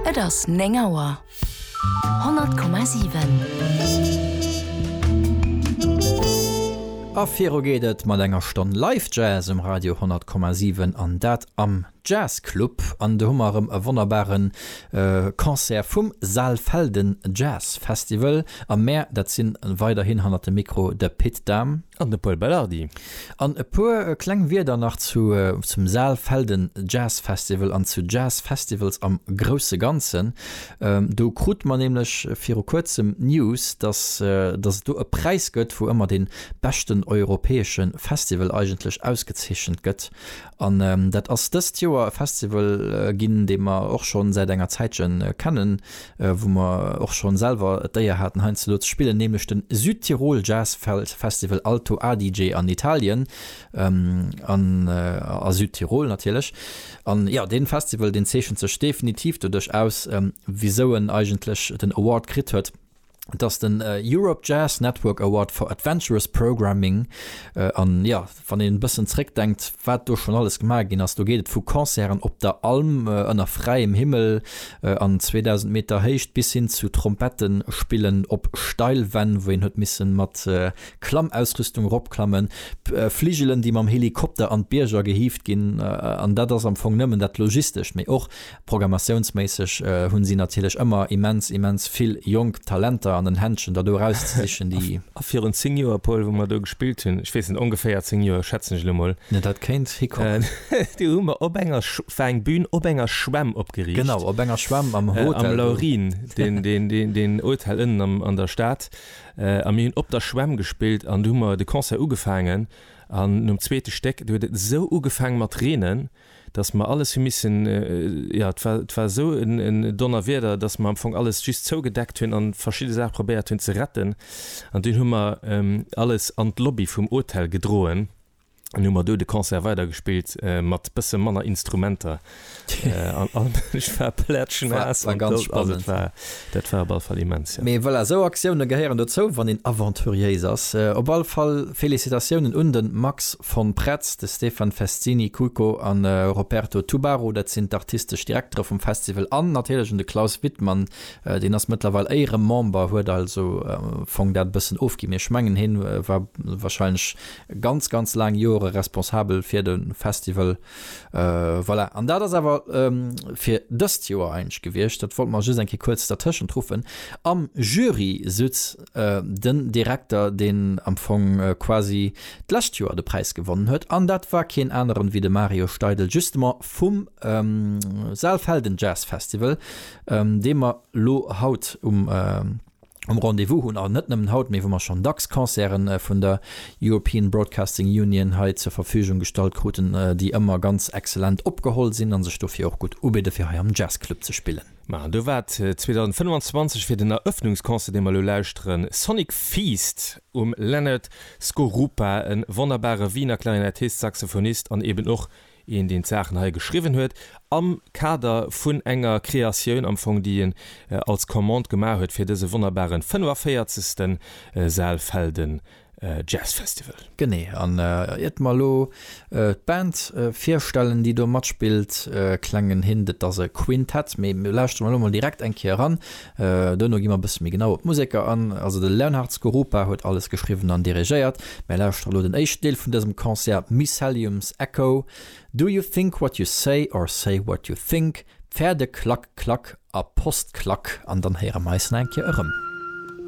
Et ass 9 Auer. 100,7. A viru geet et mat enger Stonn Live Jazz um Radio 100,7 an dat am Jazz Club. An do hu mer erëm e wonnerbare Concert vum Saalfelden Jazz Festival. A mär, dat si weiderhin hannert dem Mikro de Pit Dahm. An de Paul Belardi. An e puer kleng Wierder nach zu zum Saalfelden Jazz Festival an zu Jazz Festivals am grousse Ganzen. Do krut mer nämlech viru kuerzem d'News, dass dass et do e Präis gëtt, wou ëmmer dee beschten europäesche Festival eigentlech ausgezeechent gëtt. An dat ass dëst Joer e Festival ginn, dee mer och schonn säit enger Zäitche kennen, wou mer och schon selwer d'Éier haten heiandsdo ze spillen, nämlech den Südtirol Jazz Festival Alto Adige an Italien an a Südtirol natierlech. An jo, deen Festival deen zeechent sech definitiv doduerch aus, wisou en eigentlech den Award kritt huet, dass den Europe Jazz Network Award for Adventurous Programming an jo, Wann een e bëssen zréckdenkt, wat do schonn alles gemaach ginn ass, do geet et vu Concerten op der Alm ënner fräiem Himmel an 2.000 Meter Héicht bis hin zu Trompettespillen op Steilwänn, wou een huet misse mat Klammausrüstung eropklammen, Fligelen, déi mam Helikopter an d'Bierger gehieft ginn. An dat ass am Fong nëmmen dat Logistescht, mee och Programmatiounsméisseg hunn si natierlech ëmmer immens, immens vill jonk Talenter an den Händschen, der do erauszesichen, déi. A virun zéng Joer, Paul, wou mer do gespillt hunn, ech weess net, ongeféier zéng Joer, schätzen ech elo mol. Jo, dat kéint hikomme. Do hu mer op enger, war eng Bühn op enger Schwämm opgeriicht. Genau, op enger Schwämm am Hotel do. Am Laurin, deen Hotel ënnen an der Stad. A mir hunn op der Schwämm gespillt an do hu mer de Concert ugefaangen. An nom zweete Stéck, do huet et esou ugefaangen mat reenen. dass mer alles hu missen, jo, et war, et war esou e Donnerwieder, dass mer am Fong alles just zougedeckt hunn a verschidde Saache probéiert hunn ze retten. An dunn hu mer alles an d'Lobby vum Hotel gedroen an hu mer do de Concert weidergespillt, mat bësse manner Instrumenter an ech war plätschnaass. Et war ganz spannend. Dat war op all Fall immens, jo. Mee voilà, sou Aktioune gehéieren dozou, wann een aventuréis ass. Op all Fall Félicitatiounen un de Max von Pretz, de Stefan Festini Cuico a Roberto Tubaru, dat sinn d'artistesch Direktere vum Festival, an natierlech un de Klaus Wittmann, deen ass mëttlerweil Éieremember, huet also am Fong dat e bëssen ofginn, mee ech mengen, hien war wahrscheinlech ganz, ganz laang Jore responsabel fir de Festival. Voilà, an dat ass awer fir dëst Joer eigentlech gewiescht. Dat wollte mer just eng Kéier kuerz dertëschent ruffen. Am Jury sutz den Direkter, deen am Fong quasi d'lescht Joer de Präis gewonnen huet, an dat war keen aneren wéi de Mario Steidel, justement vum Saalfelden Jazz Festival, dee mer lo haut um. um Rendez-vous hunn, a net nëmmen haut, mee wou mer schonn dacks Concerten vun der European Broadcasting Union hei zur Verfügung gestallt kruten, déi ëmmer ganz exzellent opgeholl sinn a sech dofir och gutt ubidde fir hei am Jazzclub ze spillen. Ma do war et 2025 fir den Eröffnungsconcert, dee mer elo lauschteren, Sonic Feast um Leonard Skorupa, e wonnerbare Wiener Klarinettist, Saxophonist an eeben och een deen d'Saachen hei geschriwwen huet am Kader vun enger Kreatioun am Fong déi en als Commande gemaach huet fir dëse wonnerbaren 45. Saalfelden Jazz Festival. Genee, an iert d'mer elo d'Band virstellen déi do matspillt, klengen Hint, et ass e Quintett, mee lauschteren mer elo mol direkt eng Kéier eran, Duerno gi mer e bësse méi genau op d'Museker an. Also de Leonhard Skorupa huet alles geschriwwen an dirigéiert. Mir lauschtere elo den éischten Deel vun dësem Concert, Mycelium's Echo, Do you think what you say or say what you think, Pferde-Klack-Klack a Post-Klack, an dann héiere mer eis nach eng Kéier erëm.